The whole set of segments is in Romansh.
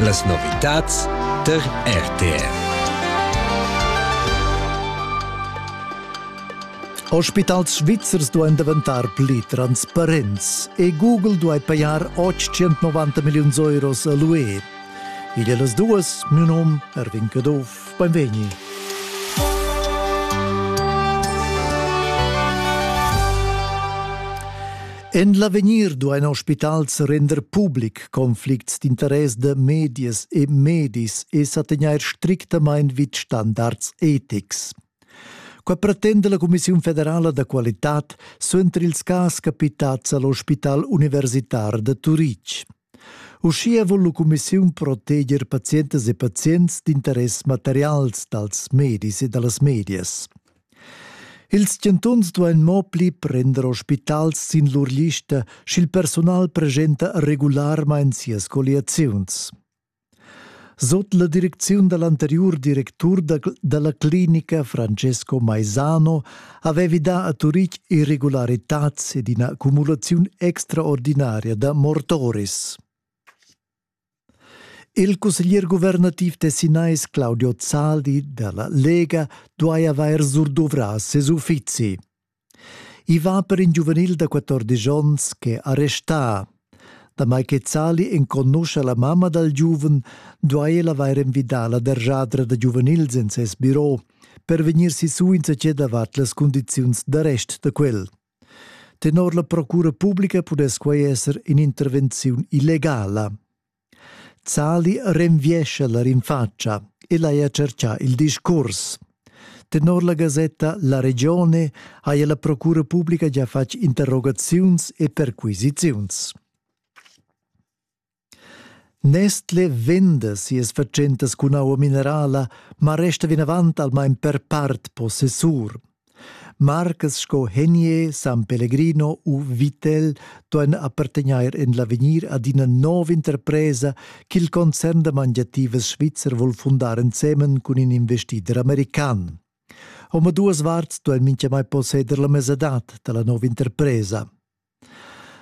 Las novitads tar RTR. Ospitals svizzers duain daventar pli transparents e Google duai pajar 890 milliuns euros a l'UE. Igl è las duas, mio num Erwin Caduff, benvegni. En l'avegnir duain ospitals render public conflicts d'interess da medias e medis e sa tegnair strictamain vid standards etics. Quai pretenda la Cumissiun federala da qualitad suenter ils cas capitads a l'ospital universitar da Turitg. Uschia vul la cumissiun proteger pazientas e pazients d'interess materials dals medis e da las medias. Ils chantuns duain mo pli prender ospitals sin lur lista, sch'il persunal presenta regularmain sias colliaziuns. Sot la direcziun da l'anteriur directur da, da la clinica Francesco Maisano avevi dà a Turitg irregularitads ed ina cumulaziun extraordinaria da mortoris. Il cusseglier guvernativ tessinais Claudio Zaldi da la Lega duai avair surduvrà ses uffizi. I va per in giuvenil da 14 onns ch'è arrestà. Damai che Zali enconuscha la mamma dal giuven, duai el avair envidà la derjadra da giuvenils en ses biro per vegnir sisù insatge davart las cundiziuns d'arrest da quel. Tenor la procura publica pudess quai esser in'intervenziun illegala. Zali renviescha la rinfatscha ed haja tscherchà il discurs. Tenor la gasetta La Regione haja la procura publica gia fatg interrogaziuns e perquisiziuns. Nestle venda sias fatschentas cun aua minerala, ma resta vinavant almain per part possessur. Marcas sco Henier, San Pellegrino u Vittel duein appartegner en l'avegnir ad ina nova interpresa ch'il concern da mangiativas svizzer vul fundar ensemen cun in investider american. Omaduas varts duein mintgamai posseder la mesadad dalla nova interpresa.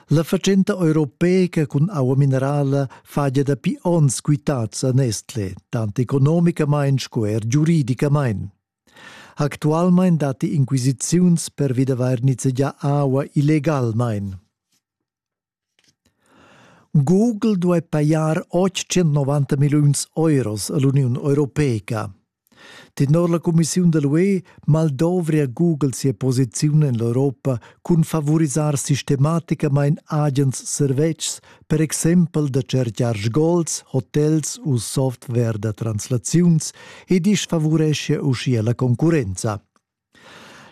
La fatschenta europeica cun aua minerala fagia dapi onns quitads a Nestle, tant economicamain sco er giuridicamain. Actualmein datti inquisiziuns pervi d'avair nizzegià aua illegalmain. Google duai pajar 890 milliuns euros a l'Uniun Europeica. Tenor la cumissiun da l'UE maldovria Google sia posiziun en l'Europa cun favurisar sistematicamain agens servetschs per exempel da tschercar sgols, hotels u software da translaziuns e disfavoreschia uschia la concurrenza.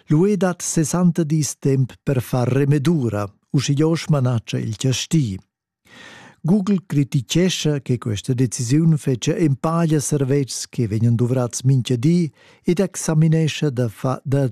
L'UE dat 60 dis temp per far remedura, uschia manatscha il chasti. Google critichescha che questa decisiun fetgia empaglia servetschs che vegnan duvrats mintga di ed examinescha da, fa, da